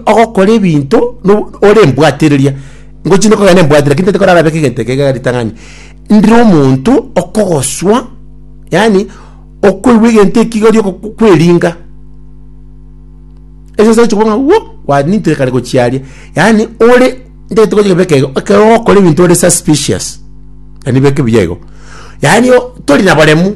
ogokora ebinto no ore embwatereria, ngochi ne kogenda embwatereria lakini tari kora arabeke egento eke egere ritang'ani. Ndire omonto okogoswa, yaani okoigwa egento eki igori ogo- kweringa, egensa ogochi kobwaa ng'a wuo, kwaninto ekare gochi aria, yaani ore ntagete gochi kobeka igo, ekero ogokora ebinto ore suspicious, yaani beke buya igo. Yaani o tori na baremu.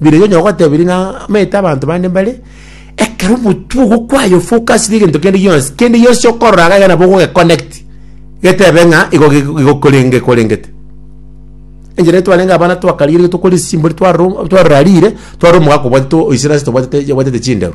Biroiyo onye ogotebirie ng'a amaete abanto bande mbare, ekero omotwe ogokwaya ofokasire egento kende gionsi, kende gionsi okorora iga iga nabo ogogeconnect, getebe ng'a igo ge- ge- gekorenge gekorengete. Enchera eria twarenge abana twakarigerigwe tokore esisimbori twarora o- twarora riire, twarora omogaka obwatete o- oise nase tobwatete yabwatete chinderu.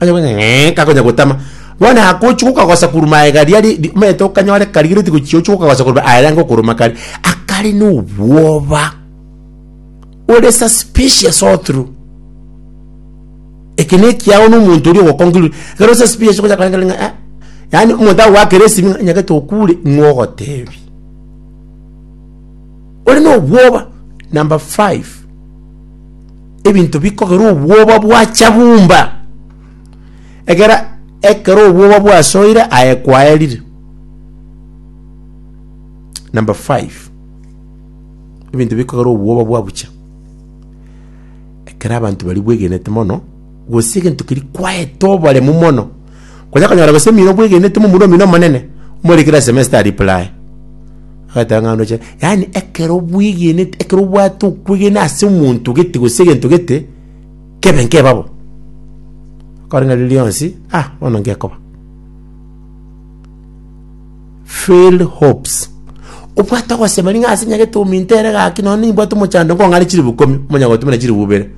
Onye gonya ng'ee, kagonya gotama. Bono agochia gokagosa korwa maega aria ri- ri- omanyete okanyore karigereti gochia gochia gokagosa korwa aria ayange okoroma kare, akare na obwoba, ore suspicious all through. Eke na ekiagera na omonto oria ogo conclude, ekero ore suspicious ogocha korenta renta ng'a eh, yaani omonto agoakera esimi ng'a nyagete okure, ing'o ogotebi? Ore na obwoba. Number five. Ebinto bikogera obwoba bwacha bumba, egera ekero obwoba bwasoire aye kwaerire. Number five, ebinto bikogera obwoba bwabucha ekero abanto bari bwegenete mono, gose egento keri kwaete oboremu mono Konya konyora gose emino bwegenete momura omino omonene, omorekere ase emesa tari pulaye. Agateba ng'a ndoche, yaani ekero bwegenete ekero obwate okwegena ase omonto gete gose egento gete, kebe nkeba bo. Kore ng'a riria rionsi, ah bono ngekoba. Failed hopes, obwate ogoseba ring'o ase nyagete ominto ere gaki nonye nimbwate omochando nkong'are chilifu ikomi, omonyagotuma na chilifu ibere.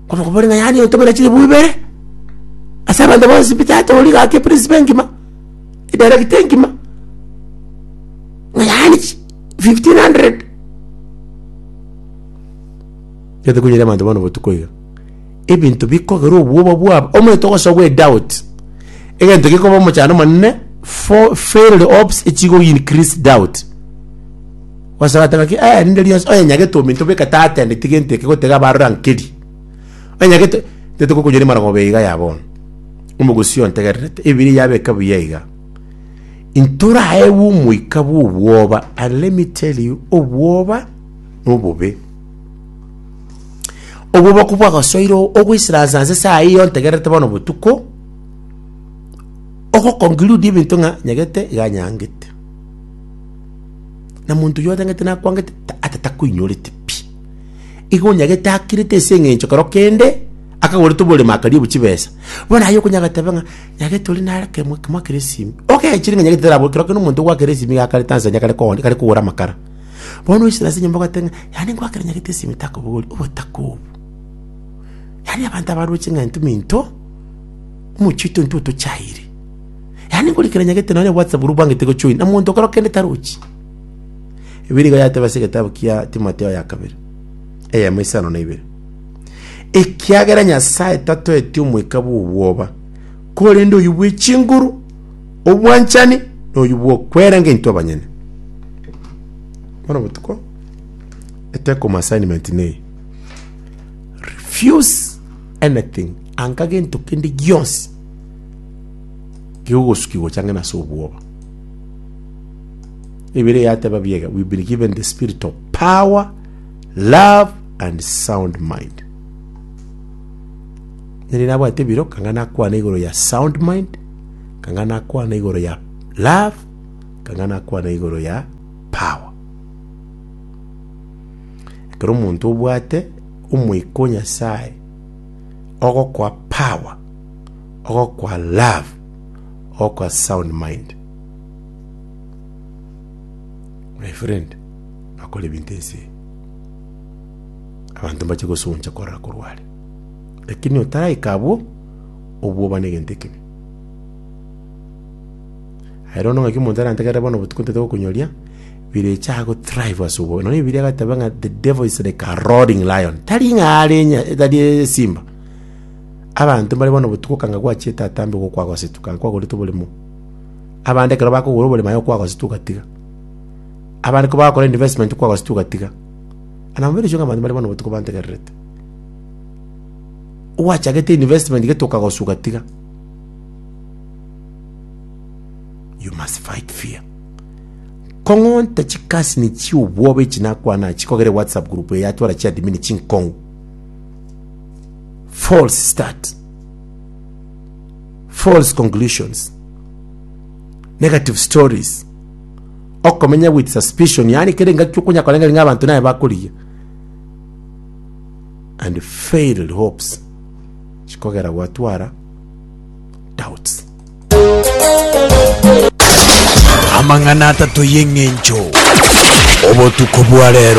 Omokumbori ng'a yaani otomera chilifu ibere ase abanto bonsi pi tatooria gaki eprisipo engima, edirekita engima, ng'a yaani chi fifteen hundred. Egento konyare abanto bono botuko iga, ebinto bikogera obwoba bwabo, omanyete ogosogwa edoubt, egento gekoba omochando omonene, fo failed hopes echigoincrease doubt. Gose agateba ki, Ee, rinde rionsi onyenyagete ominto bweka tatendeti gento eke gotega abarore ankeri. Onyenyagete, ntaete kokonyoria amarong'oba ya iga ya bono. Omogusii ontegererete, Ebibilia yabeka buya iga, Intoraegwe omoika bw'obwoba, and let me tell you, obwoba nobobe. Obwoba ko bwagosoire o- ogoisiransa nse saa eye ontegererete bono botuko, ogoconclude ebinto ng'a nyagete iga nyangete. na monto oyio otangete nakwangete ta- ata takoinyorete pi. Igo onyagete akirete ase eng'encho kero kende akagorete oboremo akaribu chibesa, bono aye okonyaa goteba ng'a nyagete ore nare kemo ekemo akere esimi, ogechire ng'a nyagete tarabo kero kende omonto ogwakera esimi iga akarete ansa enyia kare kogoni kare kogora amakara. Bono oisire ase enyomba ogoteba ng'a yaani ngwakera nyagete esimi takobogori, obotaka obo. Yaani abanto abaroche ng'a intwe mento, omochie oito intwe otochaire. Yaani ngori kera nyagete nonya obwate buru bwangete gochoin na monto okero kende tarochi. Ebi nigo yateba ase egetabu kia Timotheo ya kabere, eyemo isano na ibere. Ekiagera Nyasaye tatoeti omoika bw'obwoba, korende oyio bwe chinguru, obwanchani, na oyio bw'okweranga intwe abanyene. Bono botuko, eteko mu assignment nei. Refuse anything, anga gento kende gionsi Kegogosukigwa ochang'e nase obwoba. Ebere yateba biega, we've been given the spirit of power, love and sound mind. Nere nabwate biro kanga nakwana igoro ya sound mind, kanga nakwana igoro ya love, kanga nakwana igoro ya power. Ekero omonto obwate omoika o Nyasaye ogokoa power ogokwa love, ogokwa sound mind. My friend, bakora ebinto ense eye, abanto mbache gosuguncha korora korwa are, lakini otaraika abwo, obwoba na egento ekibe. Aye rono ng'aki omonto arantegerere bono botuko ntete gokonyoria, birecha ago thrive ase obwoba. Nonya Bibilia egateba ng'a the devil is like a roaring lion, tari ng'a are nya- tari esimba. Abanto mbare bono botuko kanga gwachia etatambe gokwa agosetu kanga kwagoretwe oboremo. Abande ekero bakogora oboremo aye okwa agosetu ogatiga. Abande kobagokora investment okwa agosetu ogatiga. Ana mobere oiswe ng'a abanto mbare bono botuko bantegererete. Gwachagete investment gete okagoswa ogatiga. You must fight fear. Kong'onta chikasini chiobwobe echi nakwana chikogere whatsapp group eye yatwara chiadmin chinkong'u. false start false conclusions negative stories okomenya with suspicion yaani kere engaki okonya korenga ng'a abanto naye bakorigia and failed hopes chikogera gwatwara doubts amang'ana atato y'eng'encho obotuko bwa rero